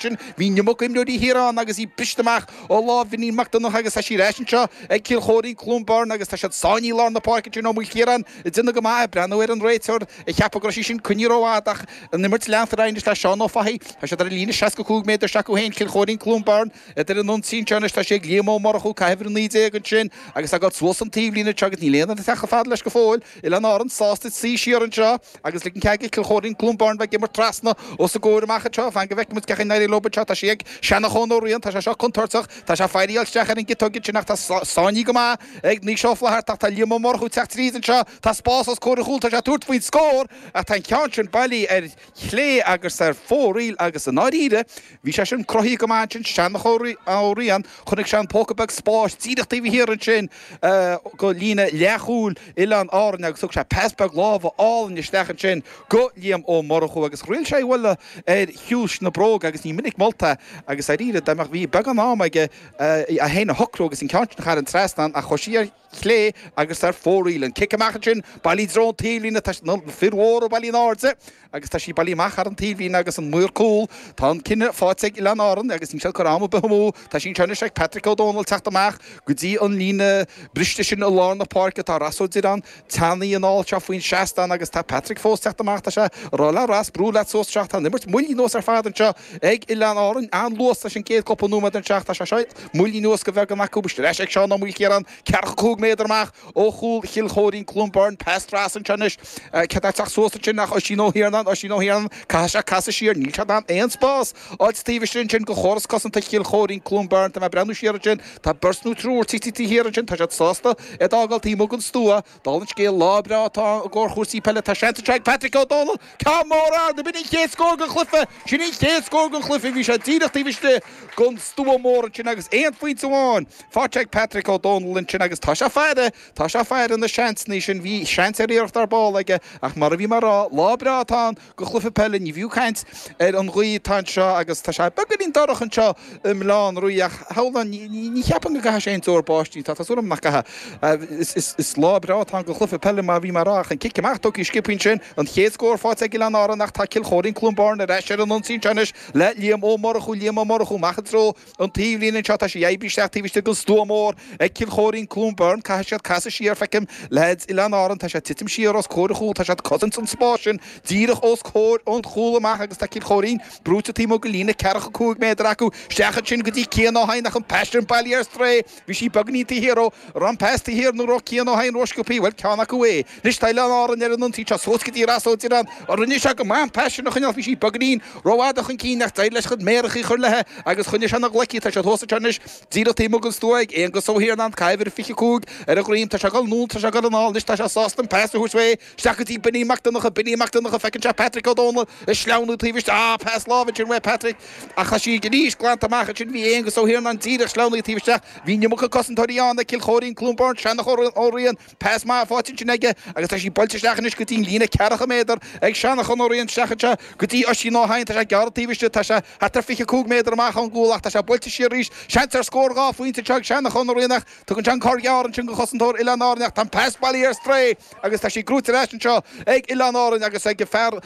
sin, bhí an iomarca imreoirí Thír Eoghain agus iad briste amach ó lámh Mhaidhm Mac Donnacha agus tá sí ar ais anseo ag Cill Chóirín, Cluain Bheirn agus tá siad sáinnithe i lár na páirce ansin Ó Maoilchiaráin ag déanamh go maith ag breathnú ar an réiteoir ag ceapadh go raibh sí sin coinnithe rófhada ach an imirt leantar anois le Seán Ó Fathaigh tá siad ar an líne 65 méadar s'acu féin Cill Chóirín, Cluain Bheirn ar an ionsaí anseo anois tá sé ag Liam Ó Murchú ag caitheamh uimhir 19 ansin agus tá sé ag goil suas an taobhlíne anseo agus níl aon fhear tagtha fad leis go fóill. Oileáin Árann sásta suí siar anseo agus ligean cead ag Cill Chóirín Cluain Bheirn bheith ag imirt trasna os a gcomhair amach anseo. Fan go bhfeicfimid cén chaoi a n-éireoidh leo anseo. Tá sí ag Seanchán Ó Riain, tá sé seo contúirteach, tá sé ag fáil isteach ar an gciotóg ansin ach tá sé sáinnithe go maith ag Naoise Ó Flaithearta ach tá Liam Ó Murchú ag teacht tríd anseo, tá spás os comhair a chúl, tá sé ag tabhairt faoin scór ach tá an ceann sin bailí ar chlé agus ar fóraoil agus i ndáiríre, Bhí sé sin cruthaithe go maith ansin, Seanchán Ó Riain, chonaic sé an póca beag spáis díreach taobh thiar ansin de líne leathchúil Oileáin Árann agus thug sé pas beag láimhe álainn isteach ansin go Liam Ó Murchú agus thriail sé í a bhualadh ar chiumhais na bróige agus ní minic molta agus dáiríre, dá mbeadh, bhí beagán ama aige é é féin a shocrú agus an ceann sin a tharraingt trasna a choise. chlé agus ar fóraoil. An cic amach ansin, bailí i dtreo an taobhlíne, tá na fir mhóra bailí in airde agus tá sí bailí amach thar an taobhlíne agus an maor cúl. Tá an cinneadh faighte ag Oileáin Árann agus níl siad ag cur am ar bith amú. Tá sí anseo anois ag Patrick Ó Dónaill teacht amach go dtí an líne briste sin i lár na páirce. Tá Ross Ó Direáin teannta anall anseo faoin seastán agus tá Patrick fós teacht amach. Tá sé ag rá le Ross, brú leat suas anseo, tá an imirt moillí anuas ar fad anseo. Ag Oileáin Árainn an luas leis an gcéad cúpla nóiméad den leath, tá sé moillithe anuas go beagán acu. Tá sé ar ais ag Seán Ó Maoilchiaráin, ceathracha cúig méadar amach ó chúl Chill Chóirín, Cluain Bheirn, pas trasna anseo anois, cé atá ag teacht suas ansin ach Oisín Ó hIarnáin, Oisín Ó hIarnáin, caithfidh sé casadh siar, níl sé in ann aon spás a fháilt taobh istigh ansin go chóras cosanta Chill Chóirín, Cluain Bheirn, tá mé ag breathnú siar ansin, tá beirt nó triúr titithe taobh thiar ansin, tá siad sásta iad a fhágáil taobh amuigh den stua, Dála an scéil, lá breá atá ann i gcomhair chúrsaí peile. Tá seans anseo ag Patrick Ó Dónaill ceann mór a fháil. B'in an chéad scór den chluiche! Sin an chéad scór den chluiche. Bhí sé díreach taobh istigh den stua mór ansin agus aon phointe amháin faighte ag Patrick Ó Dónaill ansin agus tá sé ag faire! Tá sé ag faire na seansanna sin. Bhí seans ar iarracht ar ball aige ach mar a bhí mé a rá, lá breá atá ann. do chluiche peile, ní fiú caint ar an ghaoth atá anseo agus tá sé beagáinín dorcha anseo i mBaile Átha an Rí ach thairis sin ní cheapaim go gcaithfidh sé aon deoir báistí, tá súil agam nach gcaithfidh. Is lá breá atá ann do chluiche peile mar a bhí mé a rá ach an cic amach tugtha ag Skippy ansin, an chéad scór faighte ag Oileáin Árann ach tá Cill Chóirín-Cluain Bheirn ar ais ar an ionsaí anseo anois le Liam Ó Murchú, Liam Ó Murchú amach i dtreo An taobhlíne anseo, tá sí oibrithe isteach taobh istigh den stua mór ag Cill Chóirín, Cluain Bheirn, caithfidh siad casadh siar, feicim leaids Oileáin Árann, tá siad titim siar os comhair an chúl, tá siad cosaint an spáis sin díreach os comhair an chúl amach agus tá Cill Chóirín brúite taobh amuigh go líne ceathracha cúig méadar acu isteach ansin go dtí Cian Ó hEidhin ach an pas sin bailí ar strae, Bhí sí beagáinín taobh thiar dó, raibh an pas taobh thiar nó raibh Cian Ó hEidhin rósciobthaí, bhuel, ceann acu é. Anois, tá Oileáin Árann ar an ionsaí seo suas go dtí Ros Ó Direáin a rinne sé go maith an pas sin a choinneáil. Bhí sí beagáinín rófhada chun cinn ach d'éirigh leis a chuid méarachaí a chur léithi agus choinnigh sé ina ghlaic í. Tá sí thuas anseo anois díreach taobh amuigh den stua ag Aonghus Ó hIarnáin, uimhir 25, ar a dhroim. Tá sé ag dul anonn, tá sé ag dul anall. Anois, tá sé sásta an pas a thabhairt uaidh. Isteach go dtí Binní Mac Donncha. Binní Mac Donncha, Feiceann sé Patrick Ó Dónaill ag sleamhnú taobh istigh. Ah, pas láimhe ansin uaidh Patrick. Ach tá sí anois glanta amach ansin. Bhí Aonghus Ó hIarnáin díreach sleamhnaithe taobh istigh ach bhí an iomarca cosantóirí ann ag Cill Chóirín-Cluain Bheirn. Seanachán Ó Riain. Pas maith faighte ansin aige agus tá sí buailte isteach anois go dtí an líne ceathracha méadar ag Seanachán Ó Riain. Isteach anseo go dtí Oisín Ó hEidhin. Tá sé ag gearradh taobh istigh. Tá sé thart ar fiche cúig méadar amach ón gcúl ach tá sé buailte siar arís. Seans ar scór dhá phointe anseo ag Seanachán Ó Riain ach Tugann sé an cor gearr ansin do chosantóir Oileáin Árann ach tá an pas bailithe ar strae agus tá sí buaite ar ais anseo ag Oileáin Árann agus ag fear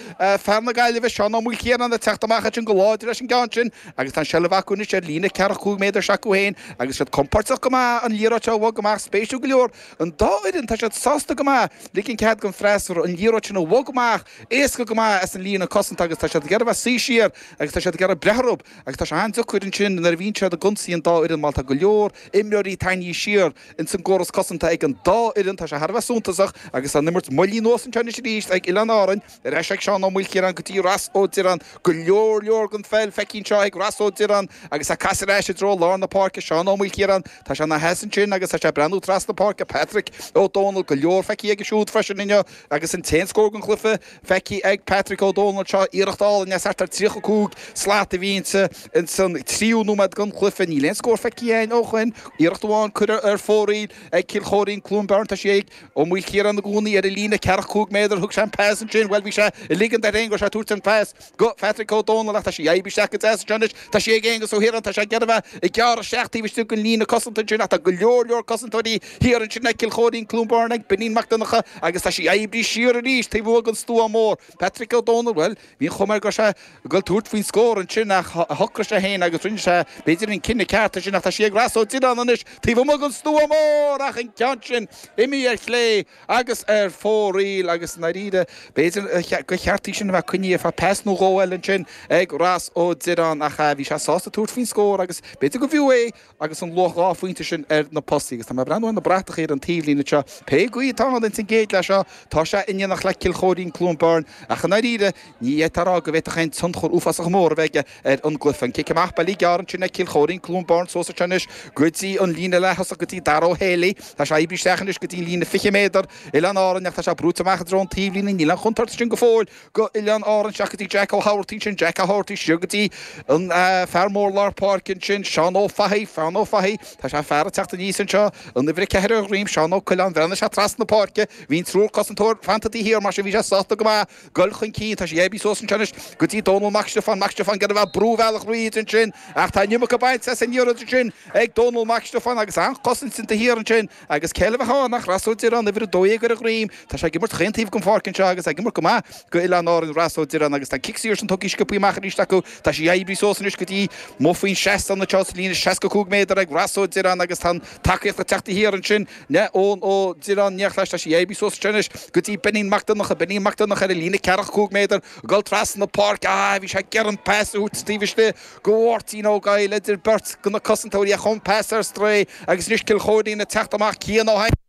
na Gaillimhe, Seán Ó Maoilchiaráin, ag teacht amach ansin go láidir leis an gceann sin agus tá an seilbh acu anois ar líne ceathracha cúig méadar s'acu féin agus siad compordach go maith an liathróid seo a bhogadh amach spéisiúil go leor an dá fhoireann tá siad sásta go maith ligean cead don freasúra an liathróid sin a bhogadh amach éasca go maith as an líne cosanta agus tá siad ag iarraidh bheith ag suí siar agus tá siad ag iarraidh breith orthu agus tá sé an-deacair ansin nuair a bhíonn siad ag ionsaí an dá fhoireann má tá go leor imreoirí tarraingthe siar ins an gcóras cosanta ag an dá fhoireann, tá sé thar a bheith suntasach agus an imirt moillithe anuas anseo anois arís ag Oileáin Árann. Ar ais ag Seán Ó Maoilchiaráin go dtí Ros Ó Direáin. Go leor leor den pheil feicthe anseo ag Ros Ó Direáin agus á casadh ar ais i dtreo lár na páirce Seán Ó Maoilchiaráin. Tá sé ina sheasamh ansin agus tá sé ag breathnú trasna páirce Patrick Ó Dónaill. Go leor feicthe aige siúd freisin inniu agus an t-aon scór den chluiche. Feicthe ag Patrick Ó Dónaill, seo iarracht álainn as thart ar 35 slat a bhí inti. Ins an tríú nóiméad den chluiche, níl aon scór feicthe againn ó shoin. Iarracht amháin curtha ar fóraoil ag Cill Chóirín, Cluain Bheirn. Tá sí ag Ó Maoilchiaráin i gcónaí ar an líne ceathracha cúig méadar, thug sé an pas ansin. Bhuel, bhí sé ag ligean air féin go raibh sé ag tabhairt an phas. Go, Patrick Ó Dónaill, ach tá sí oibrithe isteach go deas anseo anois. Tá sí ag Aonghus Ó hIarnáin, tá sé ag déanamh a, ag gearradh isteach taobh istigh den líne cosanta ansin ach tá go leor, leor cosantóirí thiar ansin ag Cill Chóirín, Cluain Bheirn, ag Beainín Mac Donncha agus tá sí oibrithe siar arís taobh amuigh den stua mór. Patrick Ó Dónaill, Bhuel, bhí an chuma air go raibh sé ag dul tabhairt faoin scór ansin ach shocraigh sé fhéin agus rinne sé, b'fhéidir, an cinneadh ceart ansin ach tá sí ag Ros Ó Direáin anois taobh amuigh den stua mór ach an ceann sin imithe ar chlé. agus ar fóraoil agus i ndáiríre b'fhéidir gur cheart í sin a bheith coinnithe ar feadh pas nó dhó eile ansin ag Ros Ó Direáin ach bhí sé sásta tabhairt faoin scór agus b'fhéidir gurbh fhiú é agus an luach dhá phointe sin ar na postaí agus tá mé ag breathnú ar na bratacha ar an taobhlíne anseo pé gaoth atá ann ins an gcéad leath seo tá sé in éineacht le Cill Chóirín-Cluain Bheirn ach i ndáiríre Ní fhéadfá a rá go bhféadfadh aon tionchar uafásach mór a bheith aige ar an gcluiche. An cic amach bailithe gearr ansin ag Cill Choirín Cluain Bheirn suas anseo anois go dtí an líne leath-thosach go dtí Dara Ó hÉalaí. Tá sé oibrithe isteach anois go dtí an líne fiche méadar, Oileáin Árann ach tá sé brúite amach i dtreo an taobhlíne. Níl an chontúirt ansin go fóill go Oileáin Árann isteach go dtí Jack Ó hÁbhartaigh ansin, Jack Ó hÁbhartaigh siar go dtí an fear mór lár páirce ansin, Seán Ó Fathaigh, Seán Ó Fathaigh. Tá sé fear ag teacht aníos anseo an uimhir a ceathair ar a dhroim, Seán Ó Coileáin. Bhreathnaigh sé trasna na páirce, bhí an triúr cosantóir fanta taobh thiar mar sin bhí sé sásta go maith. dul chun cinn. Tá sí oibrithe suas ansin anois go dtí Dónall Mac Stiofáin. Mac Stiofáin, ag iarraidh a bheith ag brú a bhealach thríd ansin ach tá an iomarca bainte as an liathróid ansin ag Dónall Mac Stiofáin agus an-chosaint taobh thiar ansin agus cé eile a bheadh ann ach Ross Ó Direáin, uimhir a dó dhéag ar a dhroim. Tá sé ag imirt chaon taobh den pháirc anseo agus ag imirt go maith go Oileáin Árann Ross Ó Direáin agus tá cic saor ansin tugtha sciopthaí amach arís acu. Tá sí oibrithe suas anois go dtí muid faoin seastán anseo sa líne seasca cúig méadar ag Ross Ó Direáin agus tá an tacaíocht ag teacht taobh thiar ansin Eoin Ó Direáin, ag teacht leis, tá sí oibrithe suas ansin anois go dtí Beainín Mac Donncha, Beainín Mac Donncha ar an líne ceathracha cúig méadar, ag dul trasna páirce, ah, bhí sé ag iarraidh an pas a thabhairt taobh istigh go Mháirtín Ó Goill, idir beirt de na cosantóirí ach an pas ar strae agus anois Cill Choirín ag teacht amach, Cian Ó hAiniféin.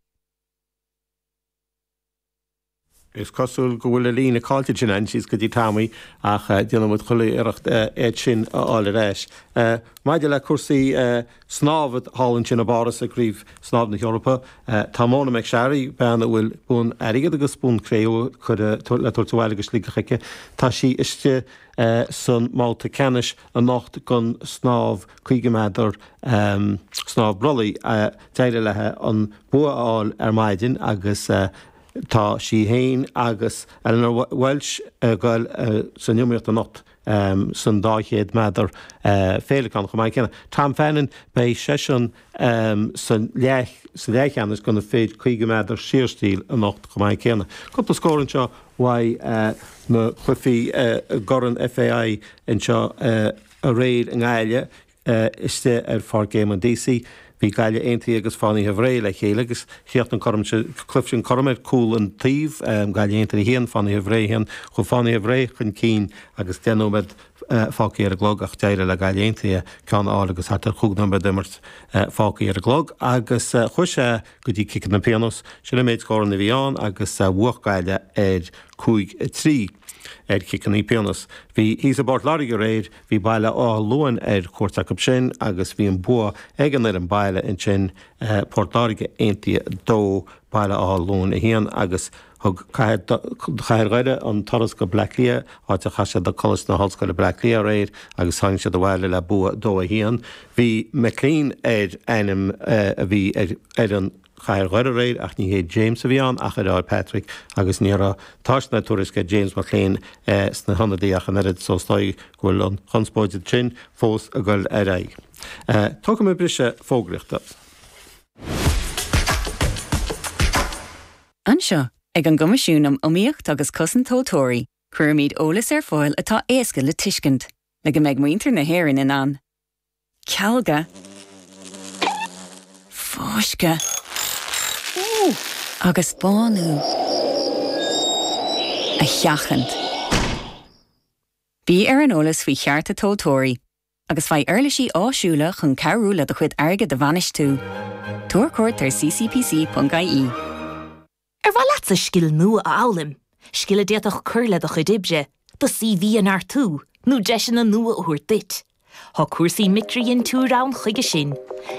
Is cosúil go bhfuil an líne caillte againn síos go dtí Tommy ach déanfaidh muid chuile iarracht iad sin a fháil ar ais. Maidir le cúrsaí snámha thall ansin i bPáras i gCraobh Snámha na hEorpa, tá Mona McSharry, bean a bhfuil bonn airgid agus bonn cré-umha le tabhairt abhaile go Sligeach aici, tá sí istigh san mbabhta ceannais. anocht don snámh 50 méadar snámh brollaigh d'éirigh léi an bua a fháil ar maidin agus tá sí féin agus Ellen Walshe ag dul san iomaíocht anocht san 200 méadar féileacán chomh maith céanna Tom Fannon beidh seisean am sa leathcheannais do na fir 50 méadar saorstíl anocht chomh maith céanna. Cúpla scór anseo uaidh na cluichí i gCorn FAI anseo aréir i nGaillimh istigh ar Pháirc Éamonn Deacy. Bhí Gaillimh Aontaithe agus Fánaithe Bhré le chéile agus chríochnaigh an corn sin cluife sin cothrom ar cúl an taobh, Gaillimh Aontaithe 1, Fánaithe Bhré 1. Chuaigh Fánaithe Bhré chun cinn agus deich nóiméad fágthaí ar an gclog ach d'éirigh le Gaillimh Aontaithe ceann a fháil agus thart ar chúig nóiméad d'imirt fágthaí ar an gclog agus chuaigh sé go dtí ciceanna pionóis. Sin an méid scóranna a bhí ann agus bhuaigh Gaillimh ar cúig a trí ar chiceanna pionóis. Bhí thíos i bPort Láirge aréir, bhí Baile Átha Luain ar cuairt acu sin agus bhí an bua ag an bhfoireann baile ansin, Port Láirge Aontaithe 2 Baile Átha Luain 1, agus. Thug cathair Dhoire an turas go Bleá Cliath, áit a chas siad le Coláiste na hOllscoile Bleá Cliath aréir agus tháinig siad abhaile le bua 2 1. Bhí McClean ar ainm a bhí ar fhoireann chathair Dhoire aréir ach ní hé James a bhí ann ach a dheartháir, Patrick, agus ní raibh tásc ná tuairisc ar James McClean sna hionadaí ach an oiread so is dóigh go bhfuil an chonspóid ansin fós ag dul ar aghaidh. Tógfaidh mé briseadh fógraíochta. Anseo, ag an gCoimisiún um Iomaíocht agus Cosaint Tomhaltóirí, cuirimid eolas ar fáil atá éasca le tuiscint, le go mbeidh muintir na hÉireann in ann cealgadh, fáisceadh agus bánú a sheachaint. Bí ar an eolas faoi chearta tomhaltóirí agus faigh uirlisí áisiúla chun cabhrú le do chuid airgid a bhainistiú. Tabhair cuairt ar ccpc.ie. Ar mhaith leatsa scil nua a fhoghlaim, scil a d'fhéadfadh cur le do chuid oibre, do CV a neartú, nó deiseanna nua a thabhairt duit? Tá cúrsaí micridhintiúir ann chuige sin.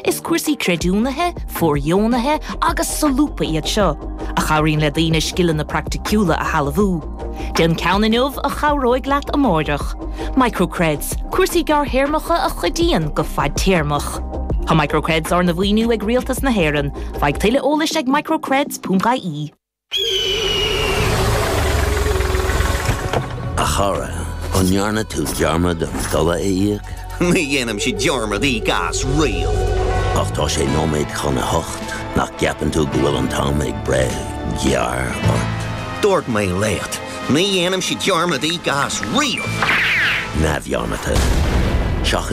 Is cúrsaí creidiúnaithe, fóirdheonaithe agus solúbtha iad seo, a chabhraíonn le daoine scileanna praiticiúla a shealbhú. Déan ceann inniu a chabhróidh leat amárach. Microcreds, cúrsaí gearrthéarmacha a chuidíonn go fadtéarmach. Tá Microcreds arna mhaoiniú ag Rialtas na hÉireann. Faigh tuilleadh eolais ag microcreds.ie. A chara, an ndearna tú dearmad an dola a íoc? Ní dhéanaimse dearmad íoc as riamh. Ach tá sé nóiméad chun a hocht, nach gceapann tú go bhfuil an t-am ag breith gearr ort? Dúirt mé leat, ní dhéanaimse dearmad íoc as riamh! Neamhdhearmadta. Seachain